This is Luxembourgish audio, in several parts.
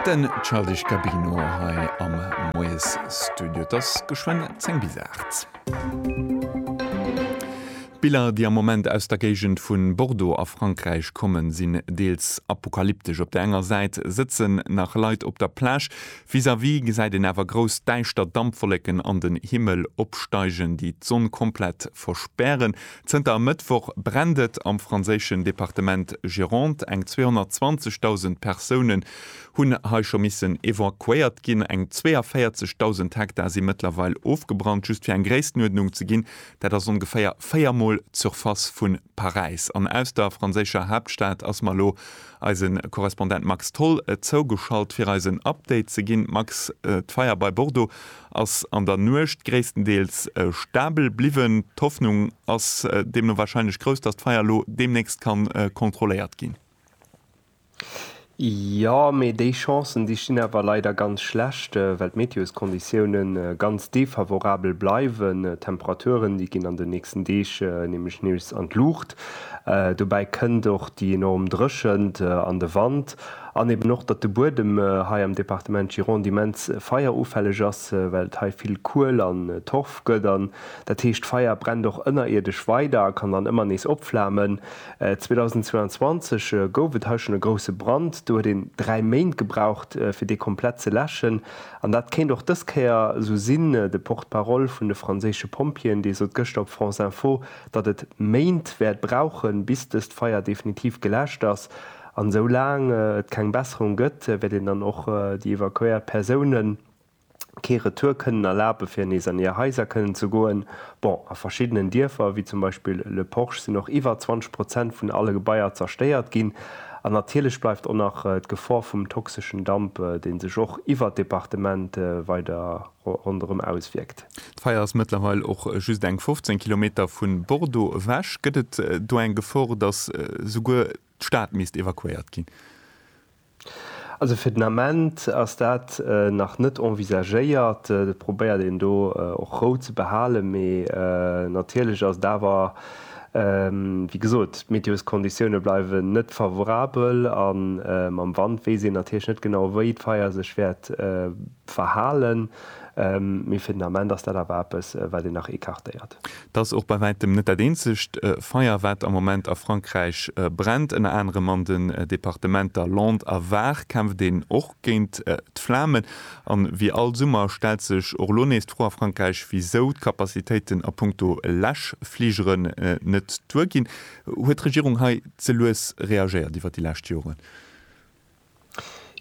Den Childish Gabino hei am Moies Studio. Et ass geschwenn 10 bis 8. D'Biller, déi am Moment aus der Géigend vu Bordeaux a Frankräich kommen, sinn deels apokalyptesch. Op der enger Säit sëtzen nach Leit op der Plage. Vis-à-vis gesäit een awer grouss däischter Dampwollécken an den Himmel opsteigen, déi d'Sonn komplett verspären. Zënter e Mëttwoch brennt et am franséischen Departement Gironde. Eng 220.000 Persounen hunn hei scho missen evakuéiert ginn. Eng 42.000 Hektar si mëttlerweil ofgebrannt. Just fir eng Gréisstenuerdnung ze ginn, dat ass ongeféier véier Mol d'Surface vu Paräis. An aus der franséischer Haaptstad ass mer elo eise Korrespondent Max Tholl zougeschalt, fir eis en Update ze ginn. Max, d'Feier bei Bordeaux ass an der Nuecht gréisstendeels stabel bliwwen. D'Hoffnung ass deemno warscheinlech grouss, datt d'Feier elo deemnächst ka kontrolléiert ginn. Jo, mee déi Chancen, déi stinn awer leider ganz schlecht, well d'Meteoskonditioune ganz defavorabel bleiwen. D'Temperaturen, déi ginn an den nächsten Deeg nämlech nees an d'Luucht. Dobäi kënnt och déi enorm Dréchent an de Wand. An eben och, datt de Buedem hei am Departement Gironde immens feierufälleg ass, well et hei vill Kuel an Torf gëtt. An dat heescht, d'Feier brennt och ënnerierdesch weider a kann dann ëmmer nees opflamen. 2022 gouf et hei schonn e grousse Brand. Do huet een dräi Méint gebraucht, fir dee komplett ze läschen. An dat kéint och dës Kéier esou sinn. De Porte-parole vun de franséische Pompjeeën, dee sot gëschter op France Info, datt et Méint wäert brauchen, bis dëst Feier definitiv geläscht ass. An esou laang et keng Besserung gëtt, wäert een dann och déi evakuéiert Persounen kee Retour kënnen erlaben, fir nees an hir Haiser kënnen ze goen. Bon, a verschiddenen Dierfer, wéi zum Beispill Le Porche, sinn och iwwer 20 Prozent vun alle Gebaier zerstéiert ginn. An natierlech bleift och nach d'Gefor vum toxeschen Damp, dee sech och iwwer d'Departement weider ronderëm auswierkt. D'Feier ass mëttlerweil och just eng 15 Kilometer vu Bordeaux ewech. Gëtt et do eng Gefor, dass souguer D'Stad misst evakuéiert ginn. Also fir den Ament ass dat nach net envisagéiert. Et probéiert een do och Rou ze behalen. Mee natierlech ass et awer, wéi gesot, d'Meteosconditioune bleiwen net favorabel a mam Wand weess een natierlech net genau, wéi d'Feier sech wäert Verhalen, mee fir den Ament ass dat awer eppes, wat een nach écartéiert. Et ass och bei wäitem net dat eenzegt Feier, wat am Moment a Frankräich brennt. Ënner anerem an den Departementer Landes a Var kämpft een och géint d'Flamen. A wéi all Summer stellt sech och elo nees d'Fro a Frankräich, wisou d'Capacitéiten a punkto Läschfligeren net duerginn. Huet d'Regierung hei ze lues reagéiert iwwer déi lescht Joren?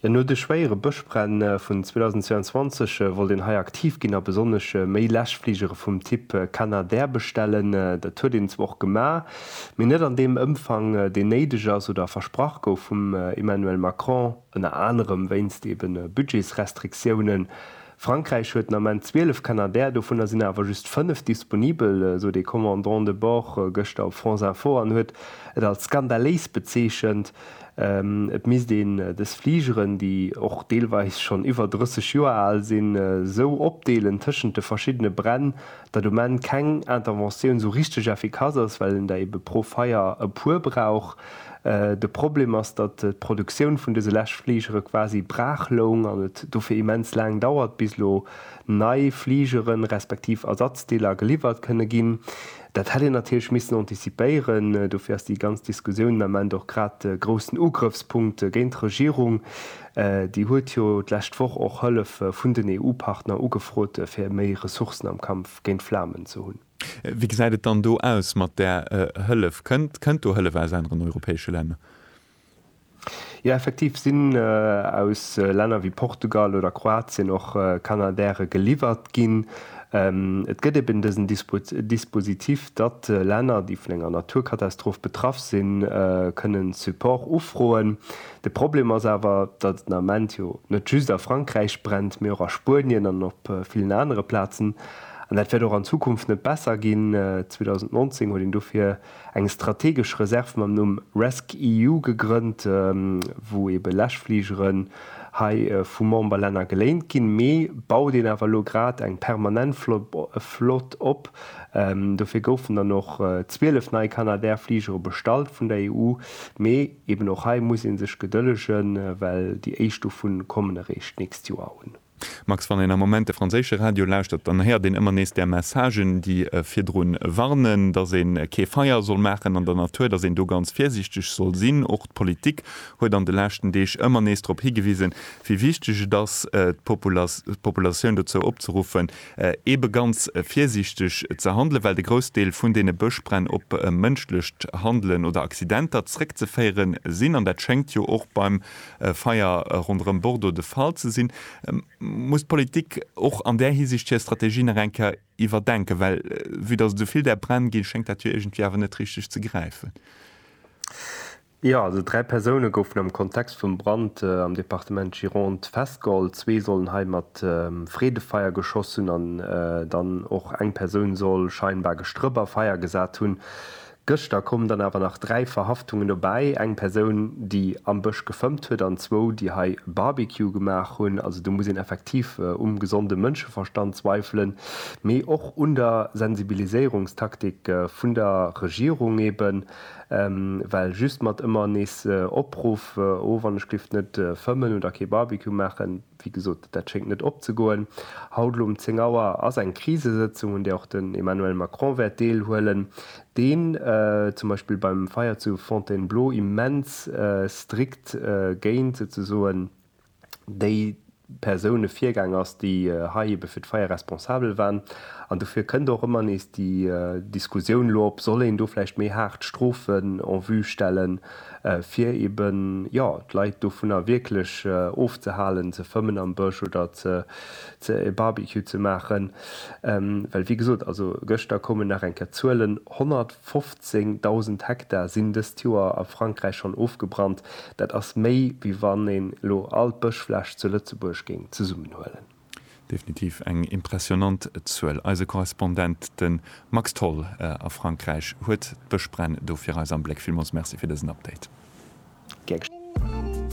Jo, no de schwéiere Bëschbränn vun 2022 wollt een hei aktiv ginn a besonnesch méi Läschfligere vum Typ Canadair bestellen. Dat huet een zwar och gemaach, mee net an deem Ëmfang, deen néideg ass oder versprach gouf vum Emmanuel Macron, ënner anerem wéinst eebe Budgetsrestriktiounen. Frankräich huet den Ament 12 Canadair, dovunner sinn awer just 5 disponibel, sot ee Commandant de bord gëschter op France Info an huet et als skandaléis bezeechent. Et misst een dës Fligeren, déi och deelweis schonn iwwer 30 Joer al sinn, esou opdeelen tëschent de verschiddene Bränn, datt um Enn keng Interventioun esou richteg effikass ass, well een der ebe pro Feier e puer brauch. De Problem ass, datt d'Produktioun vun dëse lescht Fligere quasi braach loung an et dofir immens laang dauert, bis elo nei Fligere respektiv Ersatzdeeler geliwwert kënne ginn. Dat hätt een natierlech missen antizipéieren. Dofir ass déi ganz Diskussioun den Ament och grad de groussen Ugrëffspunkt géint d'Regierung. Déi huet jo d'lescht Woch och Hëllef vun den EU-Partner ugefrot, fir méi Ressourcen am Kampf géint Flamen ze hunn. Wéi gesäit et dann do aus mat där Hëllef? Kënnt do Hëllef aus aneren europäesche Länner? Jo, effektiv sinn aus Länner wéi Portugal oder Kroatien och Canadairen geliwwert ginn. Et gëtt eben dësen Dispositif, datt Länner, déi vun enger Naturkatastroph betraff sinn, kënnen Support ufroen. De Problem ass awer, datt et den Ament jo net just a Frankräich brennt, mee och a Spuenien an op villen anere Plazen. An dat wäert och an Zukunft net besser ginn. 2019 huet een dofir eng strategesch Reserv mam Numm rescEU gegrënnt, wou ebe Läschfligeren hei vu Memberlänner geléint ginn. Mee baut een awer elo grad eng permanent Flott op. Dofir goufen dann och 12 nei Canadair Fligere bestallt vun der EU. Mee eben och hei muss ee sech gedëllegen, well déi éischt dovun kommen eréischt d'nächst Joer un. Max, Wann een am Moment de franséische Radio lauschtert, dann héiert een ëmmer nees där Messagen, déi virdrun warnen, datt ee kee Feier soll maachen an der Natur, datt een do ganz virsiichteg soll sinn. Och d'Politik huet an de leschten Deeg ëmmer nees drop higewisen, wéi wichteg et ass, d'Populatioun dozou opzeruffen, eebe ganz virsiichteg ze handelen, well de Groussdeel vun deene Bëschbränn op mënschlecht Handelen oder Accidenter zréckzeféiere sinn. An dat schéngt jo och beim e Feier ronderëm Bordeaux de Fall ze sinn. Muss d'Politik och an där Hisiicht hir Strategie nach eng Kéier iwwerdenken? Well vue datt et esou vill där Bränn ginn, schéngt dat jo iergendwéi awer net richteg ze gräifen. Jo, also dräi Persoune goufen am Kontext vum Brand am Departement Gironde festgeholl. Zwee sollen hei mat Freedefeier geschoss hunn an dann och eng Persoun soll scheinbar gestrëpp a Feier gesat hunn. Gëschter kommen dann awer nach dräi Verhaftungen dobäi, eng Persoun, déi am Bësch gefëmmt huet an zwou, déi hei e Barbecue gemaach hunn. Also do muss een effektiv um gesonde Mënscheverstand zweifelen, mee och un der Sensibiliséierungstaktik vun der Regierung eben, well just mat ëmmer nees Opruff, oh, wann ech géif net fëmmen oder kee Barbecue maachen, Wéi gesot, dat schéngt net opzegoen. Haut elo um 10 Auer ass eng Krisesëtzung, un där och den Emmanuel Macron wäert deelhuelen, deen zum Beispill beim Feier zu Fontainebleau immens strikt géint souzesoen déi Persoune virgaang ass, déi hei ebe fir d'Feier responsabel waren. An dofir kënnt och ëmmer nees déi Diskussioun elo op, soll een do vläicht méi haart Strofen en vue stellen, fir eben jo d'Leit dovunner wierklech ofzehalen ze fëmmen am Bësch oder ze ze e Barbecue ze maachen, well wéi gesot, also gëschter koumen nach eng Kéier d'Zuelen, 115.000 Hektar sinn dëst Joer a Frankräich schonn ofgebrannt. Dat ass méi wéi wann een elo all d'Bëschfläch zu Lëtzebuerg géing zesummenhuelen. Definitiv eng impressionant Zuel. Eise Korrespondent, de Max Tholl a Frankräich, huet d'Bëschbränn do fir eis am Bléck. Villmools Merci fir dësen Update. Gär geschéngen.